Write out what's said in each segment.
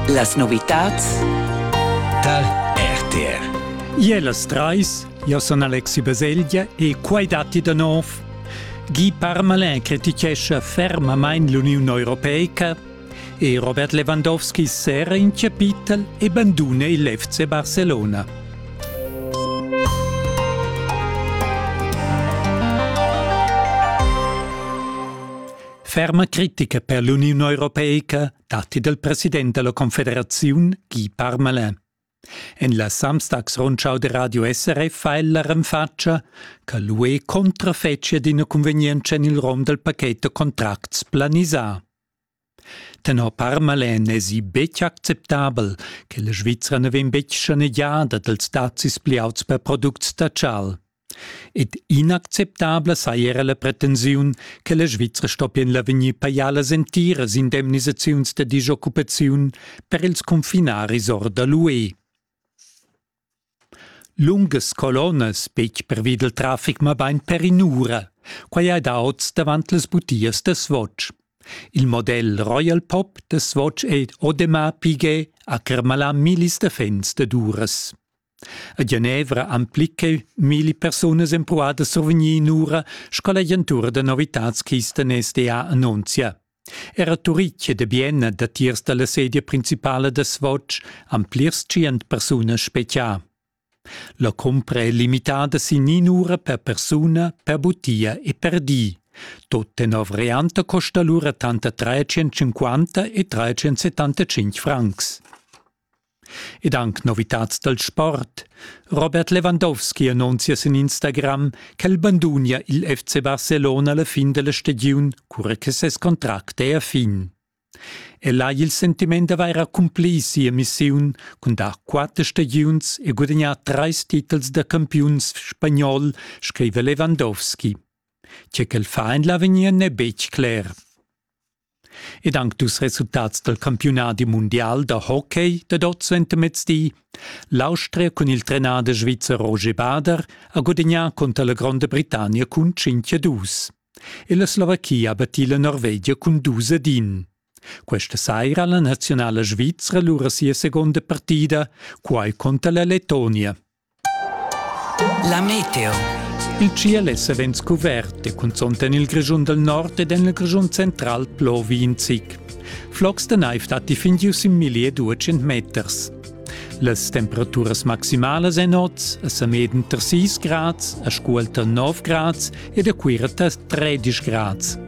Las novitads tar RTR. Ie las trais, io son Alexi Baselgia e quai datti da nov. Guy Parmalin criticescha fermamain l'Uniun Europeica e Robert Lewandowski serra in chapitel e banduna il FC Barcelona. Ferma critica per l'Uniun europeica datti dal president della Confederaziun Guy Parmelin. En la Samstagsrundschau de Radio SRF ha ella renfatscha che l'UE contrafetschia d'ina convenienza en il rom del paquet de contracts planisà. Tenor Parmelin esi betg acceptabel che la Svizzera ne vegn betg schanegiada dels dazis pliauts per products da chal. Ed inacceptabla saja era la pretensiun che la Svizra stoppien la vegnir pajalas entiras indemnisaziuns da dischoccupaziun per ils confinaris or da l'UE. Lungas colonnas, betg pervi dal traffic, mabain per in'ura. Quai è da oz davant las butias da Swatch. Il model Royal Pop da Swatch è Audemars Piguet a Kermala millis defens dad uras. A Genevra han plicheu milli persunas empruadas survgni inura sco l'agentura da novitads Kisten SDA annunzia. Era Turitg ed Bienna, datiers dalla sedia principala da Svoc, han plirs tschient persunas specia. La cumpra è limitada sin inura per persuna, per butia e per di. Tot tenor varianta costa allura tanter 350 e 375 francs. ed anc novitads dal sport. Robert Lewandowski annunzia sin Instagram ch'el bandunia il FC Barcelona alla fin della stagiun, cura che ses contract è a fin. El ha il sentiment d'avair accumpli sia missiun cun dar quatter stagiuns e guadagnar trais titels da campiuns spagnol, scrive Lewandowski. Tge ch'el fa en l'avegnir n'è betg cler. Ed anc dus resultats dal campiunadi mundial da hockey dad oz suentermezdi. L'Austria cun il trenader svizzer Roger Bader ha gudagnà cunter la Gronda Britannia cun 5-2. E la Slovachia ha battì la Norvegia cun 2-1. Questa saira la nazionala svizra lura sia seconda partida, quai conter la Lettonia. La meteo. Il tschiel è savens cuvert e cunzont en il Grischun del Nord ed en il Grischun central plovi in zic. Flocs da naiv datti fin gius in milli e duecent meters. Las temperaturas maximalas èn oz a Sameden tar 6 grads, a Scuol tar 9 grads ed a Cuira tar 13 grads.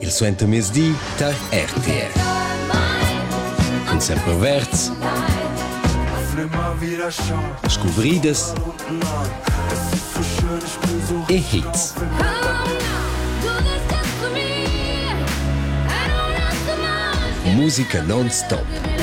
Il suentermiezdi tar RTR. Cun semperverds, scuvridas e hits. Musica non-stop.